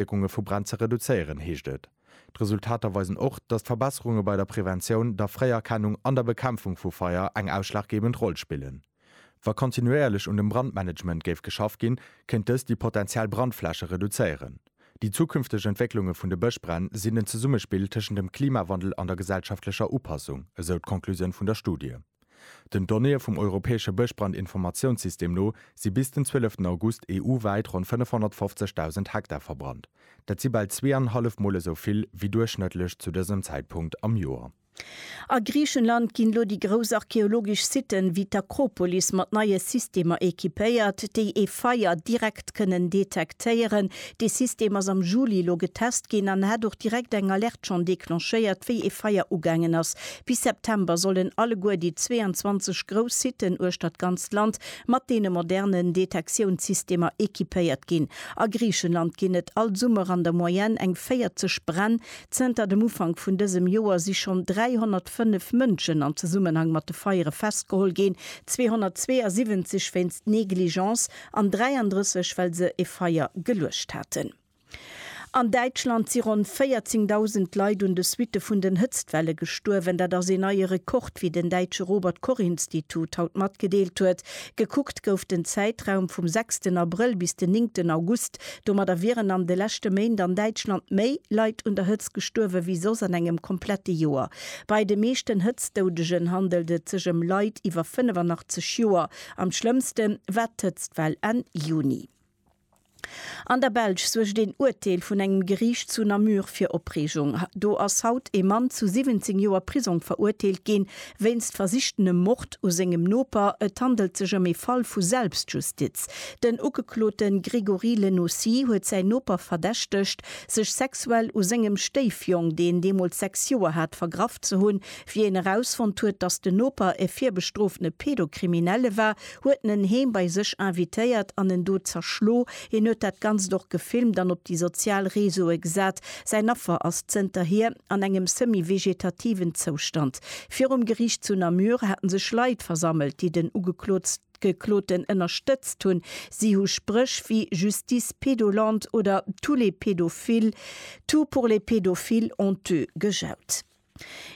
Auswierkunge vu Bränn ze reduzéieren, heescht et. D'Resultater weisen och, datt Verbesserunge bei der Preventioun, der Fréierkennung an der Bekämpfung vu Feier eng ausschlaggebend Roll spillen. Wa kontinuéierlech un dem Brandmanagement géif geschafft ginn, kéint dëst déi potenziell Brandfläche reduzéieren. Déi zukünfteg Entwécklunge vun de Bëschbränn sinn en Zesummespill tëschent dem Klimawandel an der gesellschaftlecher Upassung, esou d'Conclusioun vun der Studie. Den Donnéeë vum europäesche Bëschbrandinformatiounssystem no si bis den 12 August EU-wäit ronn 550.000 Hektar verbrannt. Dat si bal zwee an en hallef Mol esou vill wéi duerchschnëttlech zu dësem Zäitpunkt am Joer. A Griichenland ginn elo déi grouss archeologesch Sitten ewéi d'Akropolis mat neie Systemer equipéiert, déi ee Feier direkt kënnen detektéieren. Dee System ass am Juli elo getest ginn an hat och direkt eng Alerte schonn declenchéiert, wéi ee Feier ugaangen ass, Bis September sollen alleguer déi 22 grouss Siten uechtert d'ganzt Land mat deene modernen Detektiounssystemer equipéiert ginn. A Griichenland ginn et all Summer an der Moyenne eng 40 Bränn. Zënter dem Ufank vun dësem Joer si schonn 305 Mënschen am Zesummenhang mat de Feiere festgeholl ginn, 272 wéinst Negligence an 33, well se e Feier geluecht haten. An Däitschland si ronn 14.000 Leit un de Suitte vun den Hëtztwelle gestuerwen. Dat ass een neie Rekord, wéi den däitsche Robert-Koch-Institut haut matgedeelt huet. Gekuckt gouf den Zäitraum vum sechsten Abrëll bis den néngten August. Domadder wieren an de leschte Méint an Däitschland méi Leit un der Hëtzt gestuerwe wéi soss an engem komplette Joer. Bei de meeschten Hëtztdoudegen handelt et sech ëm Leit iwwer 85 Joer. Am schlëmmste war d'Hëtztwell Enn Juni. An der Belsch suergt een Urteel vun engem Geriicht zu Namur fir Opreegung. Do ass haut ee Mann zu 17 Joer Prisong verurteelt ginn, wéinst versichtenem Mord u sengem Noper. Et handelt sech ëm ee Fall vu Selbstjustiz. Den Ugeklote Grégory Lenocy huet säin Noper verdächtegt, sech sexuell u sengem Stéifjong, deen deemools sechs Joer hat, vergraff ze hunn. Wéi een erausfonnt huet, datt den Noper e virbestrofene Pedokriminelle war, huet en en heem bei sech invitéiert an en do zerschlo. Hien huet dat Ganzt och gefilmt an op déi sozial Reseaue gesat. Säin Affer ass zënterhier an engem semi-vegetativen Zoustand. Virum Geriicht zu Namur haten sech Leit versammelt, déi den Ugekloten ënnerstëtzt hunn. Si hu Spréch wéi Justice pédolante oder Tous les pédophiles, tout pour les pédophiles honteux gejaut.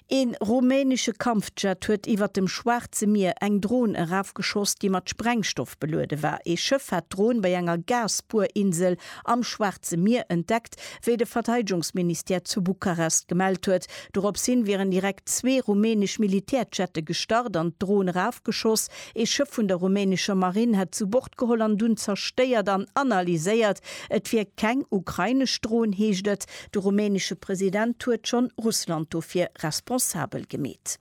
Een rumänesche Kampfjet huet iwwert dem Schwaarze Mier eng Dron erafgeschoss, déi mat Sprengstoff beluede war. Ee Schëff hat d'Dron bei enger Gasbuerinsel am Schwaarze Mier entdeckt, wéi de Verteidegungsministère zu Bukarest gemellt huet. Doropshin wieren direkt zwee rumänesch Militärjette gestart an d'Dron erafgeschoss. Ee Schëff vun der rumänescher Marinn hätt zu Bord geholl an dunn zerstéiert an analyséiert. Et wier keng ukrainesch Dron, heescht et. De rumänesche President huet schonn Russland dofir responsabel gemeet.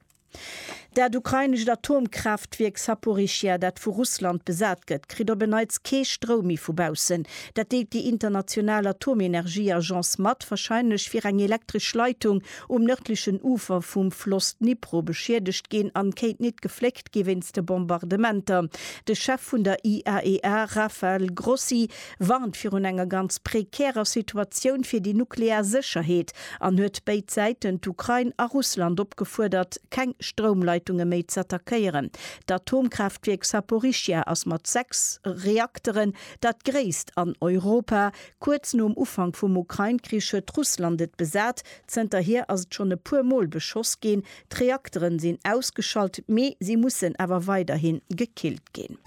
Dat ukrainescht Atomkraaftwierk Saporischschja, dat vu Russland besat gëtt, kritt op en Neits kee Stroum méi vu baussen. Dat deelt déi international Atomenergieagence mat. Warscheinlech wier eng elektresch Leitung um nërdlechen Ufer vum Floss Dnipro beschiedegt ginn an kéint nit gefléckt gi wéinst de Bombardementer. De Chef vun der IAEA Rafael Grossi warnt virun enger ganz prekärer Situatioun fir déi nuklear Sécherheet an huet béid Säiten, d'Ukrain a Russland, opgefuerdert, keng Stroumleitunge méi z'attackéieren. D'Atomkraaftwierk Saporischschja ass mat sechs Reakteren dat gréisst an Europa. Kuerz nom Ufank vum Ukrain-Krich huet Russland et besat. Zënterhier ass et schonn e puer Mol beschoss ginn. D'Reakteren sinn ausgeschalt, mee si mussen awer weiderhin gekillt ginn.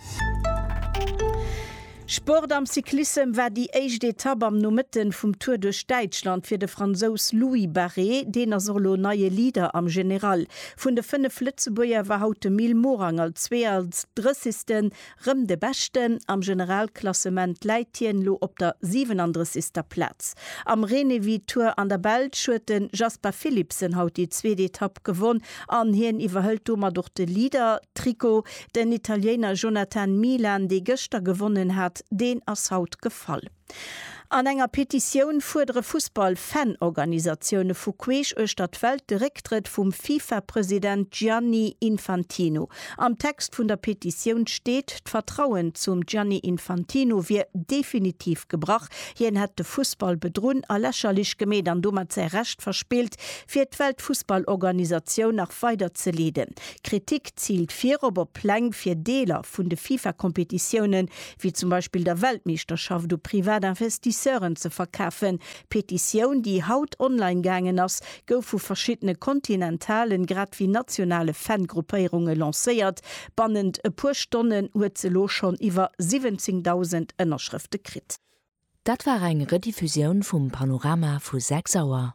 Sport Am Cyclissem war déi éischt Etapp am Nomëtten vum Tour duerch Däitschland fir de Fransous Louis Barré. Deen ass och elo neie Leader am General. Vun de 5 Lëtzebuerger war haut de Mil Morang als 32. Rëm de Beschten am Generalklassement läit hien elo op der 37. Plaz. Am Renewi Tour an der Belsch huet de Jasper Philipsen haut déi zweet Etapp gewonn an hien iwwerhëlt domat och de Leader-Trikot. Den Italiener Jonathan Milan, dee gëschter gewonnen hat, deen ass haut gefall. An enger Petitioun fuerdere Fussball-Fan-Organisatioune vu queesch uechter d'Welt de Récktrëtt vum FIFA-President Gianni Infantino. Am Text vun der Petitioun steet, d'Vertrauen zum Gianni Infantino wier definitiv gebrach, hien hätt de Fussball bedrunn a lächerlech gemeet an domat säi Recht verspillt, fir d'Weltfussballorganisatioun nach weider ze leeden. D'Kritik ziilt virop op Pläng fir Deeler vun de FIFA-Kompetitiounen wéi zum Beispill der Weltmeeschterschaft u privat Investisseuren ze verkafen. D'Petitioun, déi haut online gaangen ass, gouf vu verschiddene kontinentalen grad wéi nationale Fan-Gruppéierunge lancéiert. Bannent e puer Stonnen huet se elo schonn iwwer 17.000 Ënnerschrëfte kritt. Dat war eng Rediffusioun vum Panorama vu 6 Auer.